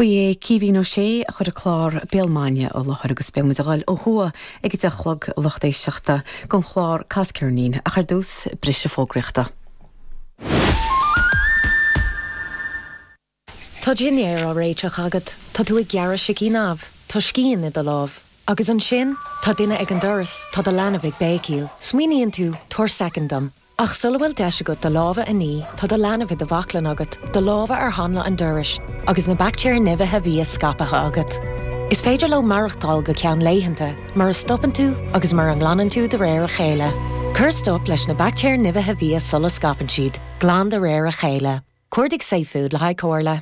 Ba é Caoimhín Ó Sé a chuir an clár Béal Maidine i láthair agus beidh muid ag gabháil ó thuaidh ag a deich a chlog le lucht éisteachta don chlár Cas Ceirnín, ach ar dtús, briseadh fógraíochta. Tá dinnéar á réiteach agat, tá tú ag gearradh sicín amh, tá scian i do lámh. Agus ansin, tá duine ag an doras, tá do leanbh ag béicíl. Smaoiníonn tú, 'Tabhair soicind dom. Ach sula bhfuil deis agat do lámha a ní, tá do leanbh i do bhaclainn agat, do lámha ar hanla an dorais, agus na baictéir nimhithe bhia scaipthe agat. Is féidir leo maireachtáil go ceann laethanta, mura stopann tú agus mura nglanann tú de réir a chéile. Cuir stop leis na baictéir nimhithe bhia sula scaipeann siad, glan de réir a chéile. Cuardaigh safefood le haghaidh comhairle.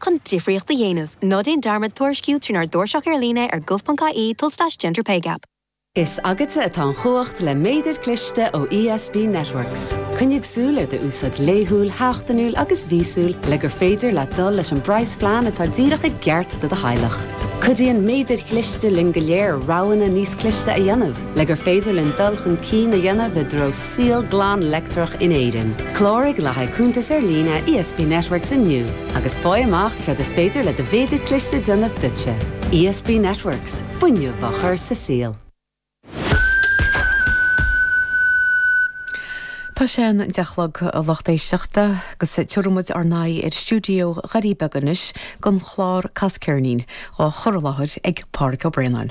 Chun difríocht a dhéanamh, ná déan dearmad tuairisciú trínár dtairseach ar líne ar gov.ie tulslais gender pay gap. Is agatsa atá an chumhacht le méadair cliste ó ESB Networks. Coinnigh súil ar do úsáid laethúil, sheachtainiúil agus mhíosúil le gur féidir leat dul leis an bpraghasphlean atá díreach i gceart do do theaghlach. Cuidíonn méadair chliste linn go léir roghanna níos cliste a dhéanamh, Le gur féidir linn dul chun cinn a dhéanamh i dtreo saol glan leictreach in Éirinn, cláraigh le haghaidh cuntas ar líne ESB Networks inniu agus faigh amach céard is féidir le do mhéadar cliste déanamh duitse. ESB Networks, fuinneamh á chur sa saol. Tá sé an deich chlog, a lucht éisteachta, agus tiubhraidh muid ár n-aghaidh ar stiúideo Dhoirí Beaga anois don chlár Cas Ceirnín, dhá chur i láthair ag Pádraig Ó Braonáin.